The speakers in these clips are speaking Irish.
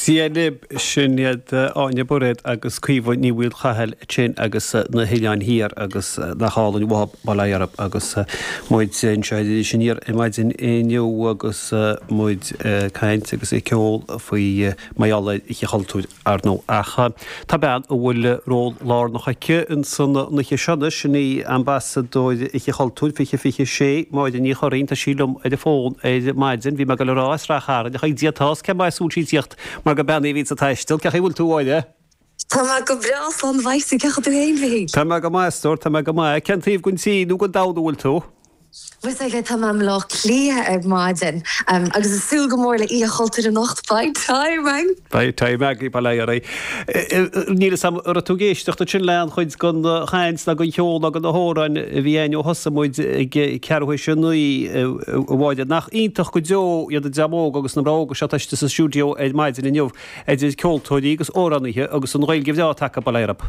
Dia libh, sin iad Áine Bairéad agus Caoimhe Ní Mhaolchathail ansin agus na hOileáin Thiar agus nach álainn uathub, bail ó Dhia oraibh, agus muid anseo ar Iris Aniar ar maidin inniu agus muid ag caint agus ag ceol faoi mar gheall ar Oíche Chultúir. Ar ndóigh, ach tá bean a bhfuil ról lárnach aici in san oíche seo anois, an Ambasadóir Oíche Chultúir 2026, Máire Ní Churraoin. Tá sí liom ar an bhfón ar maidin. Bhí mé ag dul a rá, as Ráth Chairn ach ag Dia atá a fhios cé mba as a bhfuil sí ag tíocht mar gur bean í a bhíonns ag taisteal. Cén chaoi a bhfuil tú, a Mháire? Tá mé go breá, slán mhaith, 's cén chaoi a bhfuil tú fhéin, Mhichíl? Tá mé go maith, a stór, tá mé go maith. Cén taobh gon tír nó gon domhan a bhfuil tú? Bhuel sách aisteach tá mé i mBleá Cliath ar maidin agus ag súil go mór le Oíche Chultúir anocht. Beidh time againn. Beidh time againn uilig. Níl 'fhios a'm an raibh tú ag éisteacht ansin le aon chuid den chaint nó den cheol nó de na hamhráin a bhí a'inn ó thosaigh muid ag ceathrú théis a naoi, a Mháire. Nach iontach go deo iad an dream óg agus na mná óga seo atá istigh sa stiúideo ar maidin inniu, idir ceoltóirí agus amhránaithe agus an Ghaeilge bhreá atá acu, bail ó Dhia orthu.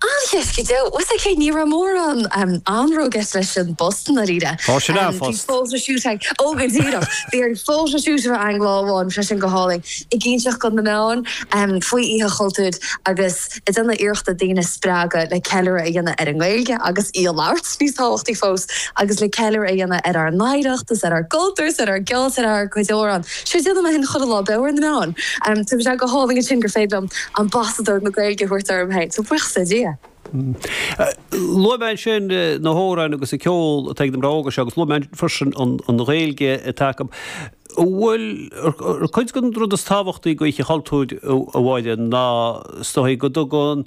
Ó, cinnte go deo. Bhuel, is é, ní raibh mórán anró ag goil leis an bpost i ndáiríre. Tá sin ar phost. Bhí photoshoot ag, ó go díreach, bhí an photoshoot ar an lá go hálainn freisin, go hálainn ag inseacht do na meáin faoi Oíche Chultúir agus ag déanamh iarrachta daoine a spreagadh le ceiliúradh a dhéanamh ar an nGaeilge agus í a labhairt níos tábhachtaí fós agus le ceiliúradh a dhéanamh ar ár n-oidhreacht is ar ár gcultúr is ar ár gceol is ar ár gcuid amhrán. So déanfaidh mé féin chuile lá beo ar na meáin. Tá sé go hálainn ansin gur féidir liom ambasadóir na Gaeilge a thabhairt orm féin, so buíochas le Dia. Luaigh mé ansin na hamhráin agus an ceol atá ag na mná óga seo agus luaigh mé freisin an Ghaeilge atá acu. An bhfuil cuid den rud is tábhachtaí d'Oíche Chultúir, a Mháire, ná is dóigh, go dtugann,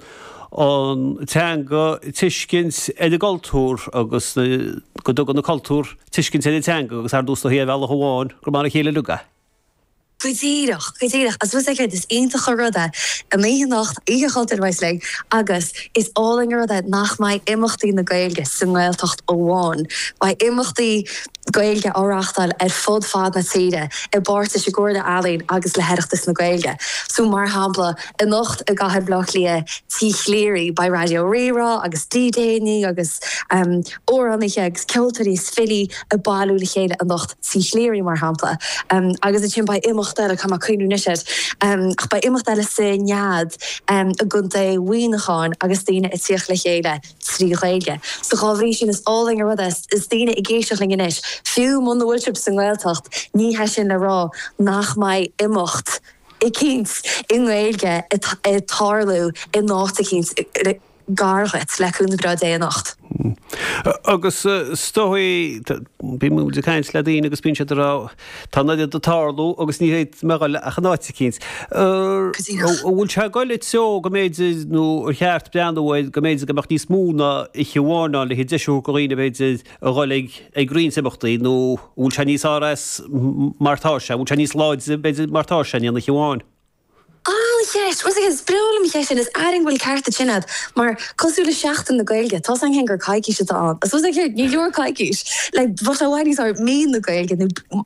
an teanga tuiscint ar an gcultúr agus go dtugann an cultúr tuiscint ar an teanga agus ar ndóigh ar bhealach amháin gur mar a chéile uilig iad. Go díreach, go díreach. Agus bhfuil 's agat, is iontach an rud é an oíche anocht, Oíche Chultúir uilig, agus is álainn an rud é nach mbeidh imeachtaí na Gaeilge sa nGaeltacht amháin. Beidh imeachtaí Gaeilge á reáchtáil ar fud fad na tíre i bpáirt leis an gComhairle Ealaíon agus le hOireachtas na Gaeilge. So, mar shampla. Anocht i gcathair Bhleá Cliath Tí Chleary beidh Raidió Rí-Rá agus DJannaí agus amhránaithe agus ceoltóirí is filí ag bailiú le chéile anocht, Tí Chleary mar shampla, agus ansin beidh imeacht eile, caithfidh mé cuimhneamh anois air, ach beidh imeacht eile sa Nead i gContae Mhuineacháin agus daoine ag tíocht le chéile trí Ghaeilge. So dhá bhrí sin is álainn an rud é is daoine ag éisteacht linn anois, fiú muna bhfuil sibh sa nGaeltacht ní hé sin le rá nach mbeidh imeacht eicínt i nGaeilge ag tarlú in áit eicínt gar dhuit, le cúnamh breá Dé anocht. Agus is dóigh, bíonn muid ag caint le daoine agus bíonn siad ag rá, tá an oiread ag tarlú agus níl mé a dhul ach in áit eicínt. An bhfuil sé ag dul i dtreo go mb'fhéidir, nó ar cheart breathnú air, go mb'fhéidir go mbeadh níos mó ná oíche amháin ann, le haghaidh deis a thabhairt do dhaoine, b'fhéidir, a dhul ag roinnt imeachtaí, nó an bhfuil sé níos RS mar tá sé, an bhfuil sé níos láidre, b'fhéidir, mar tá sé, in aon oíche amháin? An-cheist! Once again, is breá liom an cheist sin, airím go bhfuil ceart ansin a'd, mar, cosúil le Seachtain na Gaeilge, tá's a'm féin gur coicís atá ann, I suppose, like, you know, ní leor coicís, like, but I want to use our, mí na Gaeilge, nó,